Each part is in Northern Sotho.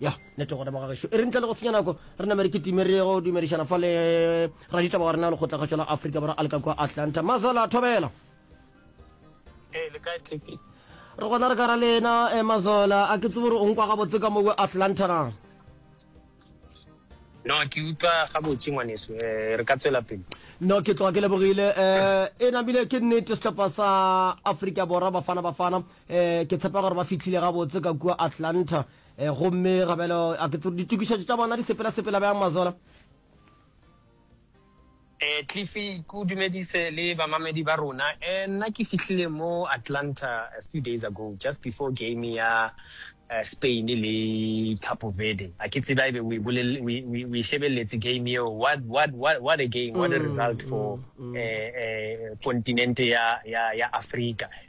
Ya, nete gona baga gešo. E re ntle le go senya nako, re name re kitime re go dumedišana fa le raditaba wa rena wa lekgotlakgašo la Afrika Borwa a le ka kua Atlanta. Mazala Thobela. Ee, le kae Tiki? Re gona re ka ra lena, eh, Mazola. A ke tsebo gore o nkwa gabotse ka mo kua Atlanta na? No, ke utlwa gabotse ngwaneso. Eh, re ka tswela pele. No, ke tloga ke lebogile. Eh, e namile ke nnete sehlopha sa Afrika Borwa Bafana Bafana. Eh, ke tshepa gore ba fitlhile gabotse ka kua atlanta eh, gomme gabelo a ke ditokišetšo tša bona di sepela-sepela bjang mazola Eh Cliffy ku dumedise le bamamedi ba rona eh nna ke fihlile mo Atlanta a few days ago just before game ya uh, Spain le Cape Verde a ke tseba ebe we bolele we we, we shebelletse game eo what what what what a game what a mm, result for mm, mm. eh eh continent ya ya ya Africa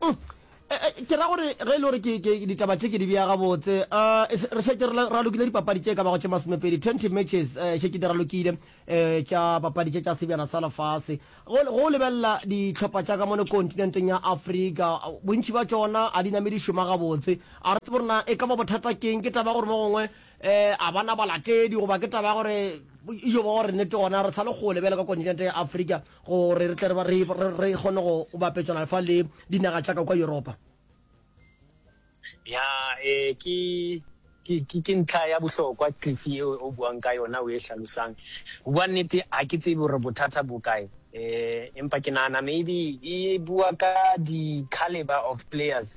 Uhm, ke ra gore ge e le gore ke ditaba tše ke di bea gabotse, uhm, re šetše re ralokile dipapadi tše ka bago tše masomepedi, twenty matches, uhm, šetše di ralokile, uhm, tša papadi tše tša sebjana sa lefase. Go go lebelela dihlopha tša ka mono kontinenteng ya Afrika, bontši bja tšona ga di name di šoma gabotse. A re tsebe gore na e ka ba bothata ke eng, ke taba ya gore mo gongwe, uhm, ga ba na balatedi goba ke taba ya gore, yo ba gore nnete gona re sa le kgole bjale ka kontinente ya Afrika, Gore re tle re re kgone go bapetšana fa le dinaga tša ka kwa Yuropa. Ya, e, ke, ke, ke, ke ntlha ya bohlokwa, Cliff, ye o, o buang ka yona, o e hlalosang. Go bua nnete, ga ke tsebe gore bothata bo kae. E, empa ke nagana maybe e bua ka di-calibre of players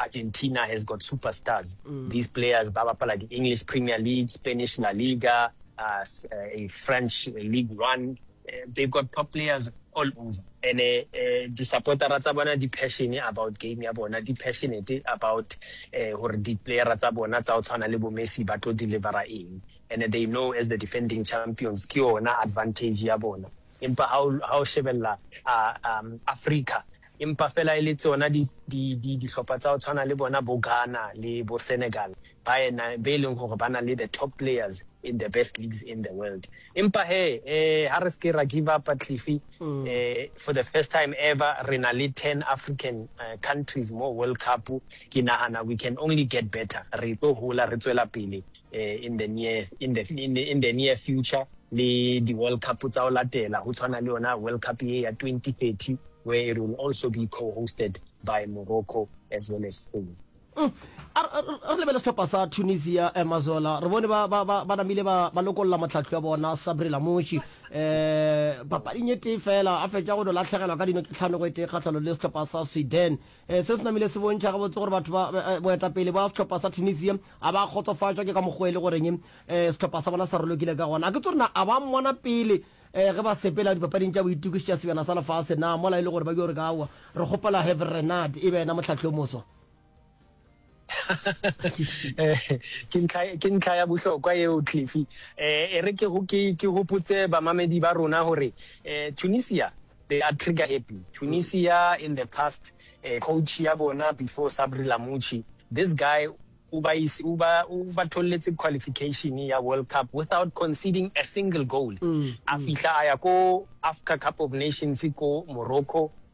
Argentina has got super stars, these players ba bapala di English Premier League, Spanish La Liga, uh, French League One, uh, they got top players all over and eh, eh, di-supportera tsa bona di-passion about game ya bona di-passionate about eh, gore di-playera tsa bona tsa go tshwana le bomessi ba tlo delivera eng and they know as the defending champions ke yona advantage ya bona empa ha o shebelela um, africa Empa fela e le tsona di, di, di, dihlopha tsa go tshwana le bona bo Ghana le bo Senegal, baena be e leng gore ba na le the top players in the best leagues in the world. Empa he, eh, ha re se ke ra give up, Cliffy. Eh, for the first time ever, re na le ten African eh, countries mo World Cup. Ke nagana we can only get better. Re tlo hola, re tswela pele. in the near, in the, in, in the near future le di-world cup tsa o latela go tshwana le yona world cup ye ya 2030 where it will also be co-hosted by morocco as well as spain mm. re lebele setlhopha sa tunisia eh, mazola re bone ba, ba, ba, ba namile ba, ba lokolola motlhatlho ya bona sabri lamoshi um eh, papading e tee fela a fetša go no latlhegelwa ka dino ke tlhanogo e tee kgatlhalo le setlhopha sa sweden Eh, se se namile se bontšha gabotse gore batho ba eh, eh, boetapele ba setlhopha sa tunisia a ba kgotsofatšwa ke ka mokgwa e le goreng um setlhopha sa bona sa rolokile ka gona a ke tso rena a ba mmona pele um ge ba sepela dipapading tša boitukiši tša sebjana sa lefase na mola e le gore ba ke gore ka aowa re kgopela heverenad e be ena motlhatlhi o moswa ke ntlha ya bohlokwa eo cliffy um e re ke gopotse bamamedi ba rona gore um tunisia they are trigger happy tunisia in the past um coach ya bona before sabri lamuchi this guy o ba tholetse qualification ya world cup without conceding a single goal mm, a mm. fihla a ya ko africa cup of nations ko morocco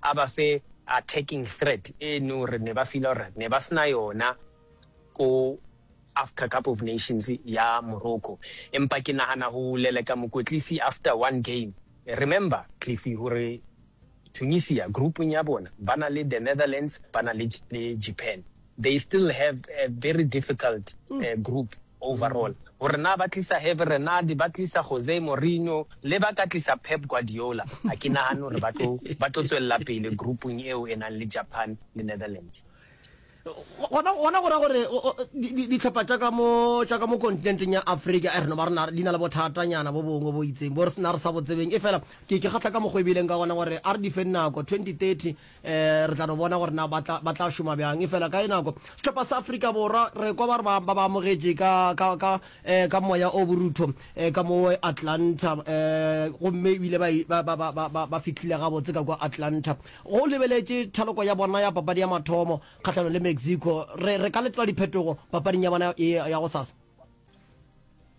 a ba fe attacking threat e no re ne ba fila gore ne ba sena yona ko after cup of nations ya morocco empa ke nagana go leleka mokwetlisi after one game remember cliffy gore tunisia groupong ya bona ba na le the netherlands ba na le japan they still have a very difficult group overall. Gore na ba tlisa Herve Renard, ba tlisa Jose Mourinho, le ba ka tlisa Pep Guardiola, ga ke nagane gore ba tlo ba tlo tswelela pele groupung eo e nang le Japan le Netherlands. Gona gona go ra gore ditlhopha tša ka mo tša ka mo kontinenteng ya Afrika eh, re no ba rena di na le bothatanyana bo bongwe bo itseng bo re sena re sa bo tsebeng. Efela ke ke kgatlha ka mokgwa e bileng ka gona gore a re di fe nako 2030 eh re tla no bona gore na ba tla šoma bjang e fela ka e nako setlhopha sa afrika borwa re kwa ba re ba ba amogetše ka ka ka eh ka moya o borutho eh ka mo atlanta eh gomme ebile ba ba ba ba ba fitlhile gabotse ka kwa atlanta go lebeletše thaloko ya bona ya papadi ya mathomo kgahlano le mexico re re ka letla diphetogo papading ya bona ya go sasa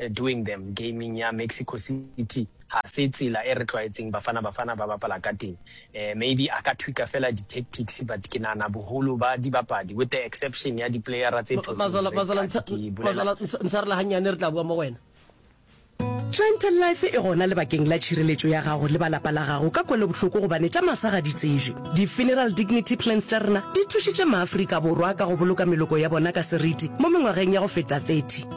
Doing them gaming ya Mexico City ga se tsela e re tlwaetseng Bafana Bafana ba bapala ka teng. Maybe a ka tweaker fela di tactics but ke nahana boholo ba dibapadi with the exception ya di player-a tse thotseng di red card ke bolela. Mazala, ntshwarela gannyane re tla bua mo go wena. Clientele life e gona lebakeng la tšhireletšo ya gago le ba lapa la gago ka kwelobohloko gobane tša masa ga di tsejwe. Di Funeral Dignity Plans tša rena di thušitše Maafrika Borwa ka go boloka meloko ya bona ka seriti mo mengwageng ya go feta 30.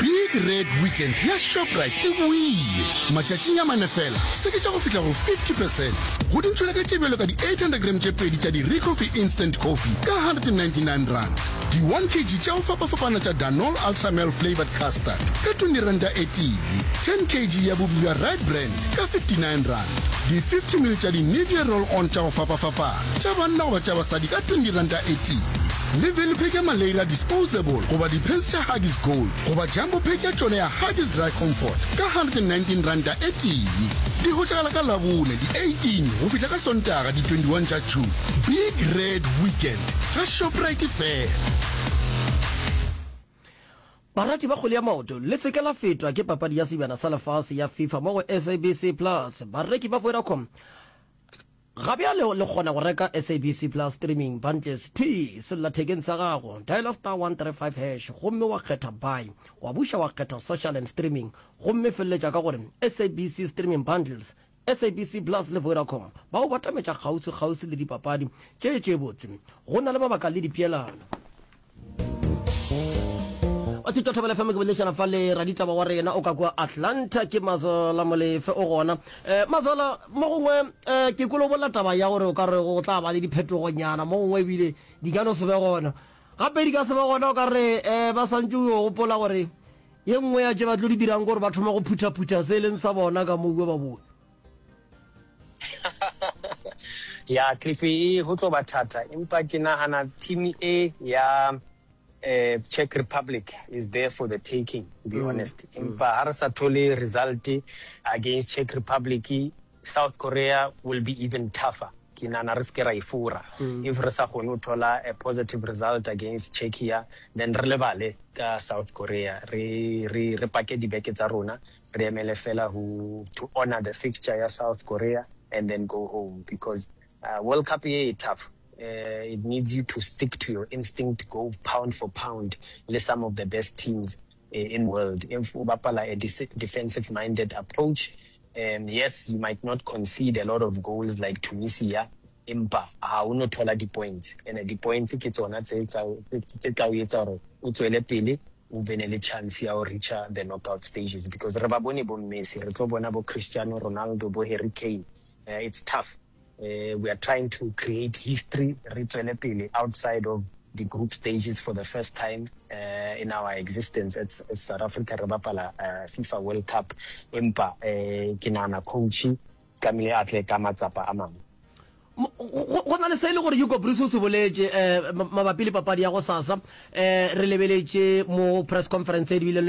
Big Red Weekend ya Shoprite e boile! Matšatšing a mane feela, seketša go fihla go 50 percent go dintšhwelete tše bjalo ka di-800 grams tše pedi tša di-Recoffee Instant Coffee ka R199, di-one kg tša go fapafapana tša Danol Ultra Male Flavoured Custard ka R20 e tee, ten kg ya bupi bja Red Brand ka R59, di-fifty ml tša di-Nivea Roll-On tša go fapafapana tša banna goba tša basadi ka R20 e tee. Le be le pheke Malaria Disposable goba di-pads tša Huggies Gold goba Jumbo Pack ya tšone ya Huggies Dry Comfort ka R119 e tee. Di hwetšagala ka Labone di 18 go fihla ka Sontaga di 21 tša June. Big Red Weekend ga Shoprite fela. Barati ba kgwele ya maoto, le se ke la fetwa ke papadi ya Sebjana sa Lefase ya Fifa mo go SABC Plus. Bareki ba Vodacom. Ga bjale le kgona go reka SABC Plus Streaming Bundles thwii sellathekeng sa gago. Dialer star 135 hash gomme wa kgetha Buy. Wa buša wa kgetha Social and Streaming gomme feleletša ka gore SABC Streaming Bundles. SABC Plus le Vodacom ba go batametša kgauswi-kgauswi le dipapadi tše tše botse. Go na le mabaka le dipeelano. wa thuto thobela fm ke bolešana fa le raditaba wa rena o ka kua atlanta ke mazola molefe o gona um eh, mazola mo gongwe um eh, ke kolobola taba ya gore o ka re go tla ba le diphetogonyana mo gongwe ebile di ka no se be gona gape di ka se be gona o ka re um ba swantse o gopola gore ye nngwe ya tše ba tlo di dirang gore ba thoma go phuthaphutha se e leng sa bona ka moue ba boe ya cliffy e go tlo ba thata empa ke nagana team e ya eh, czech republic is there for the taking to be mm. honest mm. empa ga re sa thole result against czech republic south korea will be even tougher ke nana re seke ra e fora mm. if re sa kgone go thola a positive result against czechia then re lebale ka south korea re, re, re pake dibeke tsa rona re emele fela ho to honour the fixture ya South Korea and then go home because World Cup ye e tough it needs you to stick to your instinct go pound for pound le some of the best teams in world if o bapala a defensive minded approach yes you might not concede a lot of goals like Tunisia Empa ga o no thola dipoints, ene dipoints ke tsona tse tse tla o etsa gore o tswele pele o be ne le chance ya go reacher the knockout stages because re ba bone bo Messi, re tlo bona bo Cristiano Ronaldo, bo Harry Kane, um it's tough. Um we are trying to create history re tswele pele outside of the group stages for the first time um in our existence as South Africa re bapala um FIFA World Cup empa um ke nagana coach Tlamehile a tle ka matsapa a mangwe. Go, go na le se e le gore Hugo Broos o se boletše eh, mabapi le papadi ya go sasa. Eh, re lebeletše mo press conference e dibileng le yona.